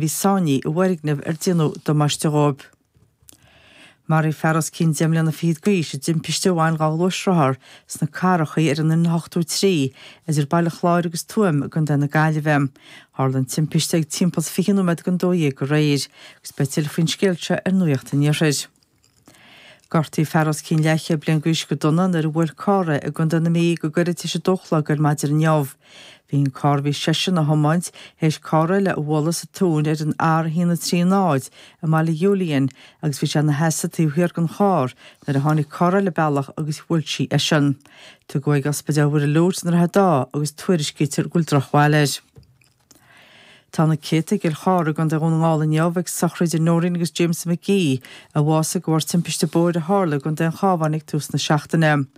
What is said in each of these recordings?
bhí saighní i bhfoirgneamh ar déanadh damáiste dhóibh. Maraíodh fear os cionn deich mbliana fichead d'aois i dtimpiste a bhain dhá ghluaisrothar sna Carrachaí ar an N83 idir Baile Chláir agus Tuaim i gContae na Gaillimhe. Tharla an timpiste ag timpeall 20 nóiméad don dó dhéag aréir agus beidh tuilleadh faoin scéal seo ar Nuacht an Iarthair. Gortaíodh fear os cionn leathchéad bliain d'aois go dona nuair a bhuail carr é i gContae na Mí go gairid tar éis a dó a chlog ar maidin inniu. Bhí an carr a bhí seisean ag tiomáint th'éis carr eile a bhualadh sa tóin ar an R130 i mBaile Julian agus bhí sé ina sheasamh taobh thiar den charr nuair a tháinig carr eile an bealach agus bhuail sí eisean. Tugadh chuig Ospidéal Mhuire Lourdes i nDroichead Átha agus tuairiscítear go bhfuil drochbhail air. Tá na céadta i gCill Chartha i gContae Dhún na nGall inniu ag sochraid Noreen agus James McGee a bhásaigh de bharr timpiste bóthair a tharla i gContae an Chábháin ag tús na seachtaine.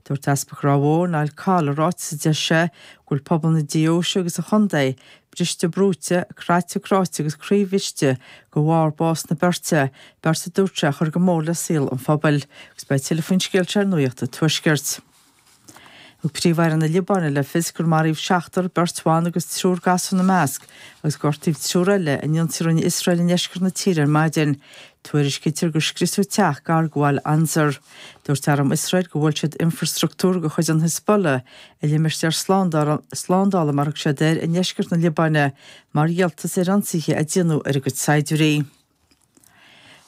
Dúirt Easpag Ráth Bhoth, Niall Coll i ráiteas a d'eisigh sé go bhfuil pobal na Deoise agus an Chontae briste brúite, craite cráite agus croíbhriste de bharr bás na beirte, beirt a dúirt sé a chuir go mór le saol an phobail. Agus beidh tuilleadh faoin scéal seo ar Nuacht an Tuaiscirt. Thug Príomh-Aire na Liobáine le fios gur maraíodh seachtar, beirt bhan agus triúr gasúr ina measc, agus gortaíodh triúr eile in ionsaí a rinne Iosrael i ndeisceart na tíre ar maidin. Tuairiscítear gur scriosadh teach gar do bhaile Ansar. Dúirt arm Iosrael gur bhuail siad infreastruchtúr de chuid an Hizbollah i limistéar slándála, mar a thug siad air, i ndeisceart na Liobáine mar dhíoltas ar ionsaithe a déanadh ar a gcuid saighdiúirí.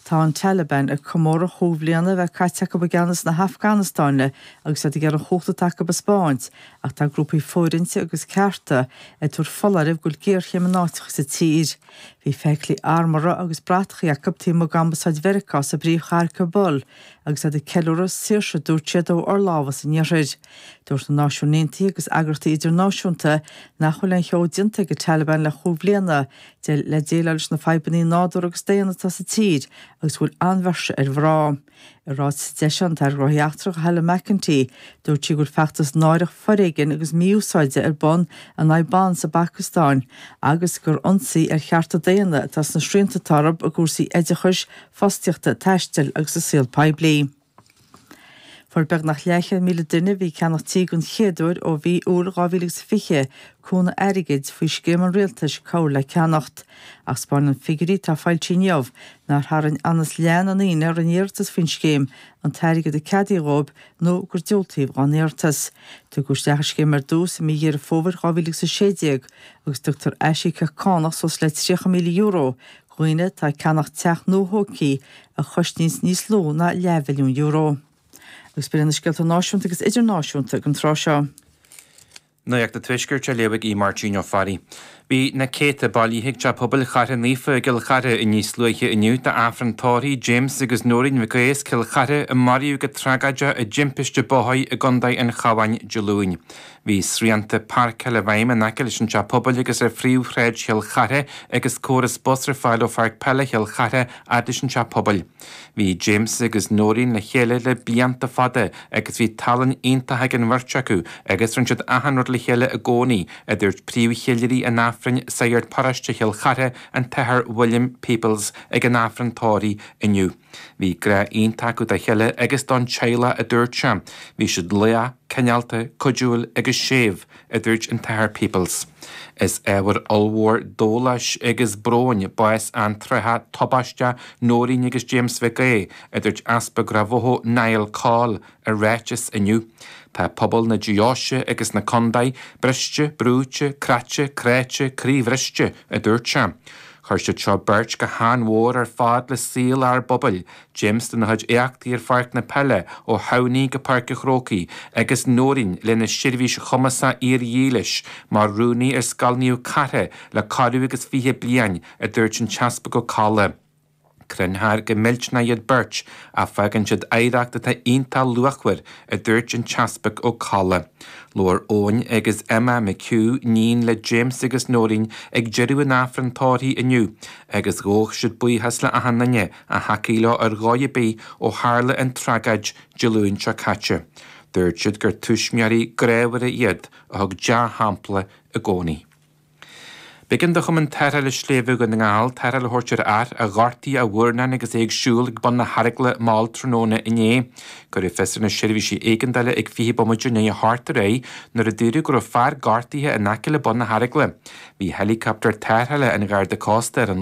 Tá an Taliban ag comóradh cúig bhliana a bheith caite acu i gceannas na hAfganastáine agus iad ag iarraidh an chumhacht atá acu a spáint, ach tá grúpaí fóirithinte agus cearta ag tabhairt foláirimh go bhfuil géarchéim in áiteacha sa tír. Bhí feithiclí armhartha agus bratacha acu taobh amuigh d'ambasáid Mheiriceá sa bpríomhchathair Kabul agus iad ag ceiliúradh saoirse a dúirt siad ó fhorlámhas an Iarthair. Dúirt na Náisiúin Aontaithe agus eagraíochtaí idirnáisiúnta nach bhfuil aon cheo déanta ag an Taliban le chúig bhliana, D'eile le déileáil leis na fadhbannaí nádúr agus daonna atá sa tír agus go bhfuil ansmacht ar mhná. I ráiteas a d'eisigh an tAire Gnóthaí Eachtracha, Helen McEntee, dúirt sí go bhfuil feachtas náireach foréigean agus mí-úsáide ar bun in aghaidh ban san Afganastáin agus gur ionsaí ar chearta daonna atá sna srianta atá orb i gcúrsaí oideachais, fostaíochta, taisteal agus sa saol poiblí. Fuair beagnach leathchéad míle duine a bhí ag ceannacht tí don chéad uair ó mhí Iúil 2020 cúnamh airgid faoi scéim an Rialtais Cabhair le Ceannacht, ach 'spáineann figiúirí atá foilsithe inniu nár tharraing anuas leath na ndaoine a rinne iarratas faoin scéim an t-airgead a ceadaíodh dhóibh nó gur diúltaíodh dá n-iarratas. Tugadh isteach an scéim ar dtús i mí Dheireadh Fómhair 2016 agus tugtar aisíocaíocht cánach suas le €30,000 dhaoine atá ag ceannach teach nua-thógthaí a chosnaíos níos lú ná leathmhilliún euro. Agus b'iad sin na scéalta náisiúnta agus idirnáisiúnta ag an tráth seo. Nuacht an Tuaiscirt á léamh ag Aodh Máirtín Ó Fearraigh. Bhí na céadta bailithe ag Teach Pobail Chartha Naofa i gCill Charthaigh níos luaithe inniu d'Aifreann tórraimh James agus Noreen Mhic Aodha as Cill Chartha a maraíodh go tragáideach i dtimpiste bóthar i gContae an Chabháin Dé Luain. Bhí srianta páirceála i bhfeidhm in aice leis an Teach Pobail agus ar Phríomh-Shráid Chill Chartha agus córas bus ar fáil ó Pháirc Peile Chill Chartha fhad leis an Teach Pobail. Bhí James agus Noreen le chéile le blianta fada agus bhí tallann iontach ag an bheirt acu agus rinne siad achan rud le chéile i gcónaí, a dúirt Príomh-Cheiliúraí an Aifrinn Sagart Paróiste Chill Chartha, an tAthair William Peoples, ag an Aifreann tórraimh inniu. Bhí grá iontach acu dá chéile agus don teaghlach a dúirt sé. Bhí siad lách, cineálta, cuidiúil agus séimh, a dúirt an tAthair Peoples. Is ábhar ollmhór dóláis agus bróin bás antráthach tubaisteach Nóirín agus James Mhic Aodha, a dúirt Easpag Ráth Bhoth Niall Coll, ar ráiteas inniu. Tá pobal na Deoise agus na Condae briste, brúite, croite, cráite, croí-bhriste, a dúirt sé. Chuir siad seo beirt go han-mhór ar fad le saol ár bpobail, James lena chuid éachtaí ar pháirc na peile ó Thamhnaí go Páirc a' Chrócaigh agus Nóirín lena seirbhís chumasach fhíor-dhílis mar Rúnaí ar Scoil Naomh Cartha le corradh agus fiche bliain, a dúirt an tEaspag Ó Colla. Cronófar go millteanach iad beirt ach fágann siad oidhreacht atá iontach luachmhar, a dúirt an tEaspag Ó Colla. Labhair Eoin agus Emma mac agus níon le James agus Nóirín ag deireadh an Aifrinn tórraimh inniu agus ghabh siad buíochas le achan nduine a thacaigh leo ar dhóigh ar bith ó tharla an tragóid Dé Luain seo caite. Dúirt siad gur tuismitheoirí grámhara iad a thug dea-shampla i gcónaí. B'éigean do Chumann Tarrthála Sléibhe Dhún na nGall tarrtháil a thabhairt ar fhear a ghortaigh a mhurnán agus é ag siúl ag bun na hEaragaile mall tráthnóna inné. Cuireadh fios ar na seirbhísí éigeandála ag 20 bomaite i ndiaidh a hocht aréir nuair a dúradh go raibh fear gortaithe in aice le bun na hEaragaile. Bhí helicopter tarrthála an Gharda Cósta ar an.